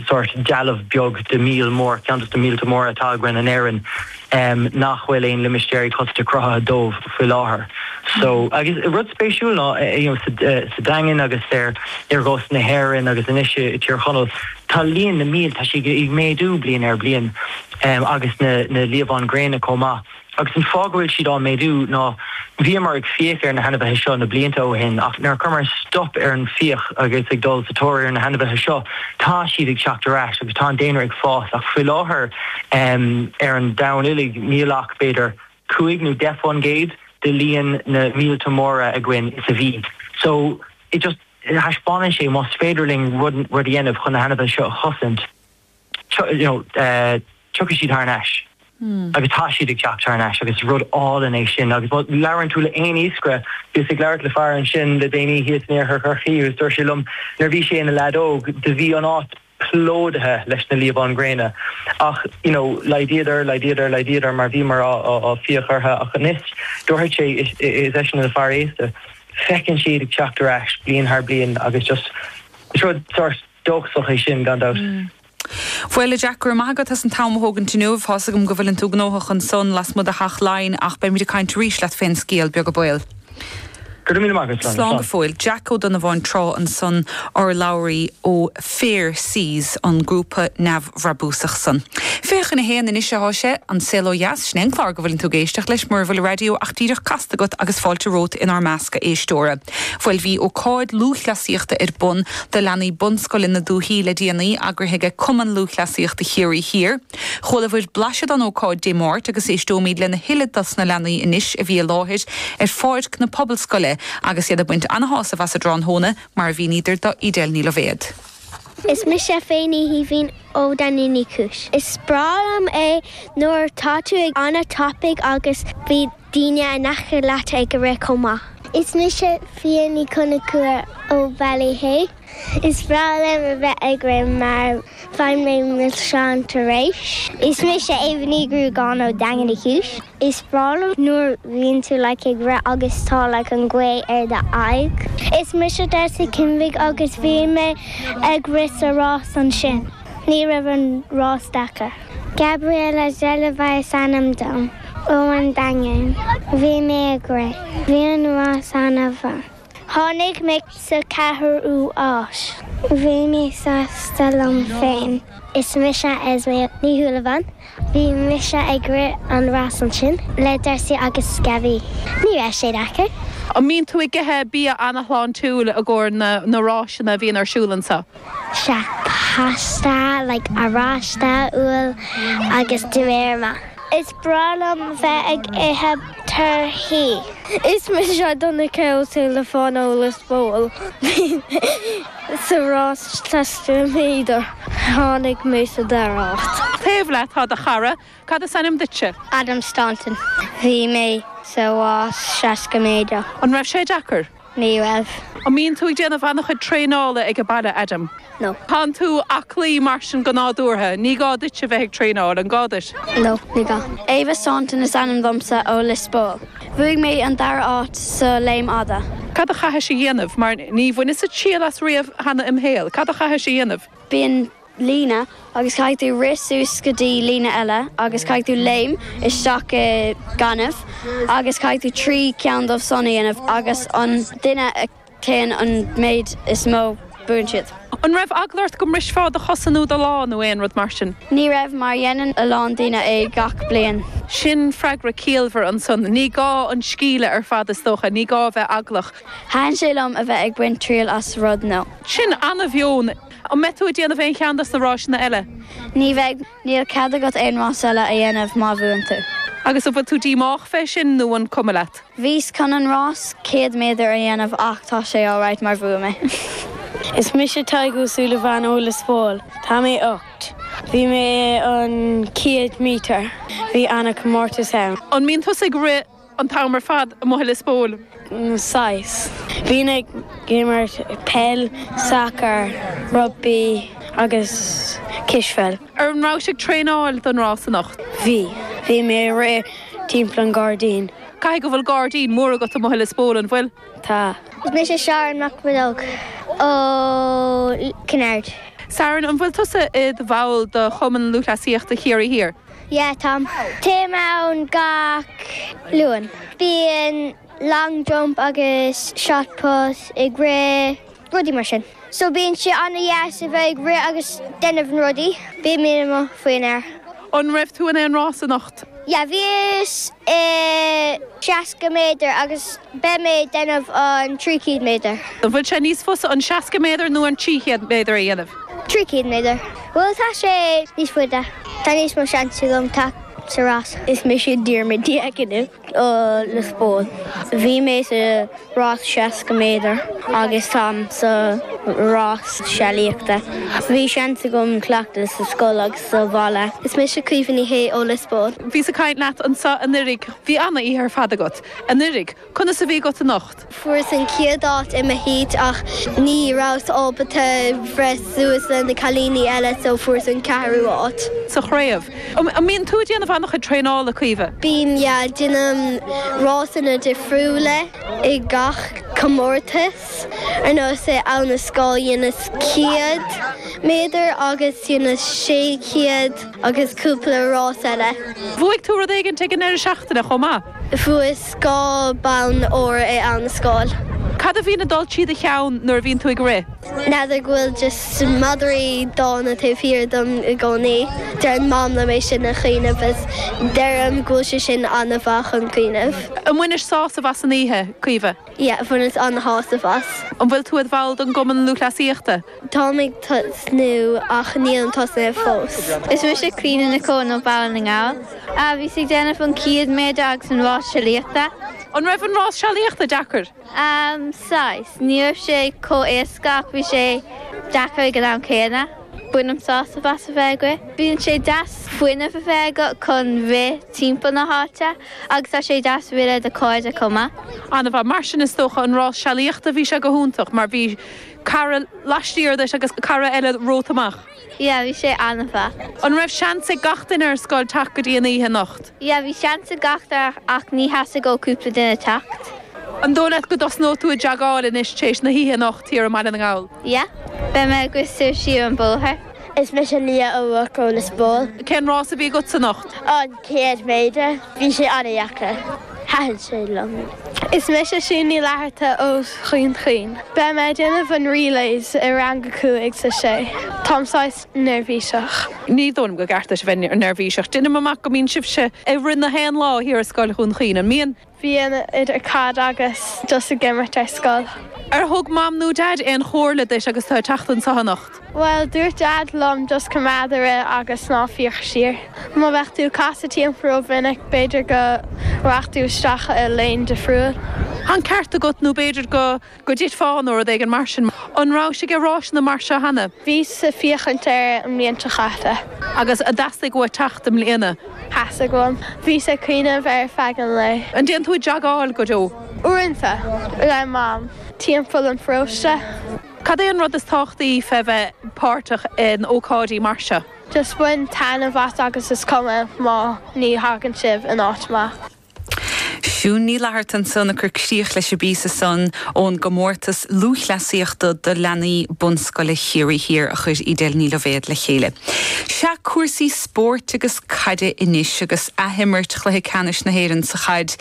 sórt dealbh beag de mhíol mór, ceann de na míolta móra atá againn in Éirinn, nach bhfuil aon limistéirí cosanta cruthaithe dóibh faoi láthair. So, agus rud spéisiúil ná, you know, sa Daingean agus ar chósta na hÉireann agus anois i dTír Chonaill, tá líon na míol, tá sí ag méadú bliain ar bliain, agus na liamhán gréine chomh maith. agus an fáth go bhfuil siad ag méadú ná bhíomar ag fiach ar na hainmhithe seo na blianta ó shin ach nuair a chuireamar stop ar an bhfiach agus ag dul sa tóir ar na hainmhithe seo tá siad ag teacht ar ais agus tá an daonra ag fás ach faoi láthair ar an domhan uilig níl ach b'fhéidir cúig nó deich faoin gcéad de líon na míolta móra againn is a bhí so it just thaispeánann sé más féidir linn rud a dhéanamh chun na hainmhithe seo a chosaint. Tiocfaidh siad thar n-ais. Agus tá siad ag teacht thar n-ais agus is rud álainn é sin. Agus má labhrann tú le haon iascaire, bhíos ag labhairt le fear ansin le déanaí thíos in Iarthar Chorcaí agus dúirt sé liom nuair a bhí sé ina lead óg, do bhí an áit plódaithe leis na liamháin gréine ach you know laghdaíodar, laghdaíodar, laghdaíodar mar bhíomar ag fiach orthu ach anois dúirt sé, is eisean ina fhear aosta, feiceann siad ag teacht ar ais bliain thar bliain agus just is rud sort. Dóchasach é sin, gan dabht. Bhuel, a Jack, go raibh maith agat as an t-am a thógaint inniu. Tá's agam go bhfuileann tú gnóthach ansan lasmuigh de Theach Laighean ach beimid ag caint arís leat fén scéal beaga baol. Go raibh míle maith agat, slán. Slán go fóill. Jack O'Donovan Trá ansan, urlabhraí ó Fair Seas, an grúpa neamhbhrabúsach san. Fiche chun a haon anois athá sé, An Saol Ó Dheas, sin é an clár go bhfuileann tú ag éisteacht leis mura bhfuil raidió ach díreach casta agat agus fáilte romhat inár measc, a éisteora. Bhuel bhí ócáid lúthchleasaíochta ar bun do leanaí bunscoile na dúthaí le déanaí, eagraithe ag Cumann Lúthchleasaíochta Chiarraí Thiar. Chualabhair blaiseadh don ócáid Dé Máirt agus éisteoimid lena thuilleadh dos na leanaí anois a bhí i láthair ar pháirc na Pobalscoile agus iad ag baint ana-shásamh as a dtráthnóna, mar a mhíníodar do Edel Ní Loibhéad. Is mise Féinní Shaoibhín ó Daingean Uí Chúis. Is breá liom é nuair atá tú ag an a topic agus bhí. daoine in aice leat ag rith chomh maith. Is mise Fia Ní Chonchúir ó Ballyhea. Is breá liom a bheith ag rith mar faigheann mé milseáin tar éis. Is mise Ava Ní Ghruagáin ó Daingean Uí Chúis. Is breá liom nuair a bhíonn tú like ag rith agus tá like an ghaoth ar do aghaidh. Is mise Darcy Kinvig agus bhí mé ag rith sa rás ansin. Ní raibh an rás deacair. Gabriella Zellova is ainm dom, ó an Daingean. Bhí mé ag rith. Bhí an rás an-mhaith. Tháinig mé sa ceathrú áit. Bhí mé sásta liom féin. Is mise Esme Ní Shúilleabháin. Bhí mise ag rith an rás ansin le Darcy agus Gabby. Ní raibh sé deacair. An mbíonn tú ag ithe bia an-shláintiúil i gcomhair na na ráiseanna a bhíonn ar siúl anseo? Sea, pasta, like oráiste, úll agus mar sin. Is breá liom bheith ag ithe torthaí. Is mise Donncha Ó Súilleabháin ó Lios Póil. Bhí mé sa rás seasca méadar. Bhí mé sa dara háit. Taobh leat tá do chara, Cad is ainm duitse? Adam Staunton. Bhí mé sa rás 60 méadar. An raibh sé deacair? Ní raibh. An mbíonn tú ag déanamh an-chuid traenála ag an baile, Adam? No. Tánn tú aclaí, mar sin, go nádúrtha. Ní gá duitse bheith ag traenáil, an gá duit? No, ní gá. Ava Staunton is ainm domsa, ó Lios Póil. Bhuaigh mé an dara háit sa léim fhada. Cad a chaithis a dhéanamh? Mar ní bhaineas-sa triail as riamh cheana im' shaol. Cad a chaithis a dhéanamh? Bíonn líne agus caithfidh tú rith suas go dtí líne eile agus caithfidh tú léim isteach i gaineamh agus caithfidh tú trí ceann dóibh san a dhéanamh agus an duine a théann an méid is mó buann siad. An raibh eagla ort go mbrisfeá do chosa nó do lámh nó aon rud mar sin? Ní raibh mar dhéanann a lán daoine é gach bliain. Sin freagra ciallmhar ansan. Ní gá, an scil ar fad is dócha. Ní gá a bheith eaglach. Thaithin sé liom a bheith ag baint triail as rud nua. Sin ana-mheon. An mbeidh tú ag déanamh aon cheann dos na ráiseanna eile? Ní bheidh. Níl cead agat aon rás eile a dhéanamh má bhuann tú. Agus an bhfuil tú díomách fé sin nó an cuma leat? Bhíos chun an rás 100 méadar a dhéanamh ach tá sé alright mar bhuaigh mé. Is mise Tadhg Ó Súilleabháin ó Lios Póil. Tá mé ocht. Bhí mé an céad méadar. Bhí ana comórtas ann. An mbíonn tusa ag rith? an t-am ar fad amuigh i Lios Póil? Saghas. Bhínn ag imirt peil, sacar, rugbaí agus cispheil. Ar, an rabhais ag traenáil don rás anocht? Bhí. Bhí mé ag rith timpeall an ghairdín. Caithfidh go bhfuil gairdín mór agat amuigh i Lios Póil, an bhfuil? Tá. Is mise Sharon Mac Bhreóg ó Chinn Aird. Sharon, an bhfuil tusa i do bhall de Chumann Lúthchleasaíochta Chiarraí Thiar? Yeah, táim. Téim ann gach Luan. Bíonn long jump agus shot put ag rith, rudaí mar sin. So bíonn sé ana dheas a bheith ag rith agus déanamh na rudaí. Bíonn muid amuigh faoin aer. An raibh tú in aon rás anocht? Yeah, bhíos i seasca méadar agus beidh mé ag déanamh an trí céad méadar. An bhfuil sé níos fusa an seasca méadar nó an trí chéad méadar a dhéanamh? Trí céad méadar. Bhuel, tá sé níos faide. Tá níos mó seans agam teacht sa rás. Is mise Diarmuid Ó hAiniféin ó Lios Póil. Bhí mé sa rás 60 méadar agus táim sa rás sealaíochta. Bhí seans agam cleachtadh sa scoil agus sa bhaile. Is mise Caoimhe Ní Shé ó Lios Póil. Bhíos ag caint leat anso anuraidh. Bhí an-oíche ar fad agat anuraidh. Conas a a bhí agat anocht? Fuaireas an chéad áit i mo heat ach ní rabhas ábalta breith suas leis na cailíní eile so fuaireas an ceathrú áit. sa chraobh. An mbíonn tú ag déanamh an-chuid traenála, Caoimhe? Bím, yeah. Déanaim rásanna difriúla i gach comórtas. Ar nós i Abha na Scáil dheineas céad méadar agus dheineas sé chéad agus cúpla rás eile. Bhuaigh tú rud éigint ag an ndeireadh seachtaine chomh maith? Bhuas dhá bonn óir in Abha na Scáil. Cad a bhíonn ag dul trí do cheann nuair a bhíonn tú ag rith? N'fheadar, go bhfuil just madraí dána taobh thiar dom i gcónaí. Deireann Mam liom é sin a chuimhneamh is deirim go bhfuil sé sin an-mhaith chun cuimhneamh. Ar bhainis sásamh as an oíche, Caoimhe? yeah bhaineas an-shásamh as. An bhfuil tú id bhall den gCumann Lúthchleasaíochta? Táim ag tosnú ach nílim tosnaithe fós. Is mise Clíona Nic Eoin ó Bhaile na nGall. Bhíos ag déanamh an céad méadar agus an rás sealaíochta. An raibh an rás sealaíochta deacair? Saghas. Ní raibh sé chomh éasca ach bhí sé deacair ag an am céanna. Bainim sásamh as a bheith ag rith. Bíonn sé deas fuinneamh a bheith agat chun rith timpeall na háite agus tá sé deas rith le do chairde chomh maith. An-mhaith. Mar sin is dócha an rás sealaíochta, bhí sé go hiontach mar bhí cara laistiar duit agus cara eile romhat amach? Yeah, bhí sé an-mhaith. An raibh seans ag gach duine ar scoil teacht go dtí an oíche anocht? Yeah, bhí seans ag gach duine ach níor theastaigh ó cúpla duine teacht. An dóigh leat go dtosnóidh tú ag joggáil anois tar éis na hoíche anocht thiar i mBaile na nGall? Yeah, beidh mé ag siúl siar an bóthar. Is mise Leah O'Rourke ó Liospóil. Cén rás a bhí agatsa anocht? An céad méadar. Bhí sé an-deacair. Thaitin sé liom. Is mise Siún Ní Fhlatharta ó Dhún Chaoin. Beidh mé ag déanamh an relays i rang a cúig is a sé. Táim saghas. neirbhíseach. Ní dóigh liom gur ceart duit a bheith neirbhíseach. Deinim amach go mbíonn sibhse ag rith na haon lá thiar i Scoil Dhún Chaoin, an mbíonn? Bíonn, idir caid agus dul ag imirt ar scoil. Ar thug Mam nó Daid aon chomhairle duit agus tú ag teacht anseo anocht? Bhuel, dúirt Daid liom just coimeád ag rith agus ná féach siar. Má bheadh tú ag casadh timpeall ró-mhinic, b'fhéidir go raghadh tú isteach i lána difriúil. Tá an ceart agat nó b'fhéidir go. Go dtitfeá nó rud éigin mar sin. An rabhais ag rásanna mar seo cheana? Bhíos ag féachaint air an bhliain seo chaite. Agus ar theastaigh uait teacht i mbliana? Theastaigh uaim. Bhíos ag cuimhneamh air feadh an lae. An dtéann tú ag joggáil go deo? Uaireanta. Le Mam. Timpeall an pharóiste. Cad é an rud is tábhachtaí fé bheith páirteach in ócáidí mar seo? Just bain taitneamh as agus is cuma má ní thagann sibh in áit maith. Siún Ní Fhlatharta ansan ag cur críoch leis an bpíosa san ón gComórtas Lúthchleasaíochta do Leanaí Bunscoile Chiarraí Thiar a chuir Edel Ní Loibhéad le chéile. Sea, cúrsaí spóirt agus caide anois agus ath-imirt Chluiche Ceannais na hÉireann sa Chaid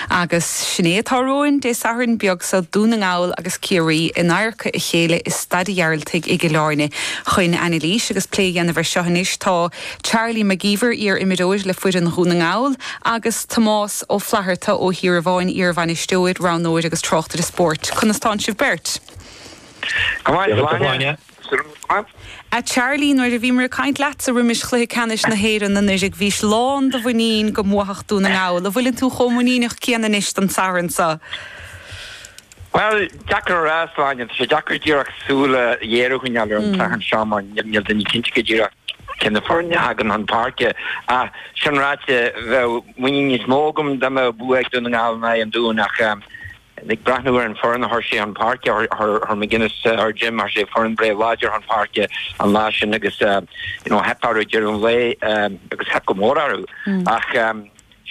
agus sin é atá romhainn Dé Sathairn beag so, Dún na nGall agus Ciarraí in adharca a chéile i Staid a' Ghearaltaigh i gCill Áirne. Chun anailís agus plé a dhéanamh ar seo anois tá. Charlie McGeever, iar-imreoir le foireann Dhún na nGall, agus Tomás Ó Flatharta ó Thíorabháin, iar-bhainisteoir, roghnóir agus tráchtaire spóirt. Conas tánn sibh beirt? Go maith agat, a Shláine. A Charlie, nuair a bhíomar ag caint leatsa roimis chluiche ceannais na hÉireann anuraidh bhís lán do mhuinín go mbuafadh Dún na nGall. An bhfuileann tú chomh muiníneach céanna anois don Satharn so? Bhuel, deacair a rá, a Shláine. Tá sé deacair díreach súil ghéar a choinneáil ar an tSatharn seo mar níl daoine cinnte go díreach cé na foirne a thagann chun páirce. Ach sin ráite, bheadh muinín níos mó agam dá mbeadh bua ag Dún na nGall in aghaidh an Dúin ach ag breathnú ar an bhfoireann a chuir sé chun páirce, chuir McGuinness, chuir Jim, chuir sé foireann breá láidir chun páirce an lá sin agus, you know, theip orthu ag deireadh an lae agus theip go mór orthu ach,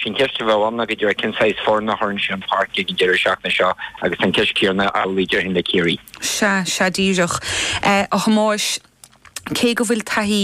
Sin ceist a bheadh ann, ná go díreach cén saghas foirne a chuireann sé chun páirce ag an deireadh seachtaine seo agus an ceist chéanna amhlaidh déarfainn le Ciarraí. Sea, sea díreach, a Thomáis. Cé go bhfuil taithí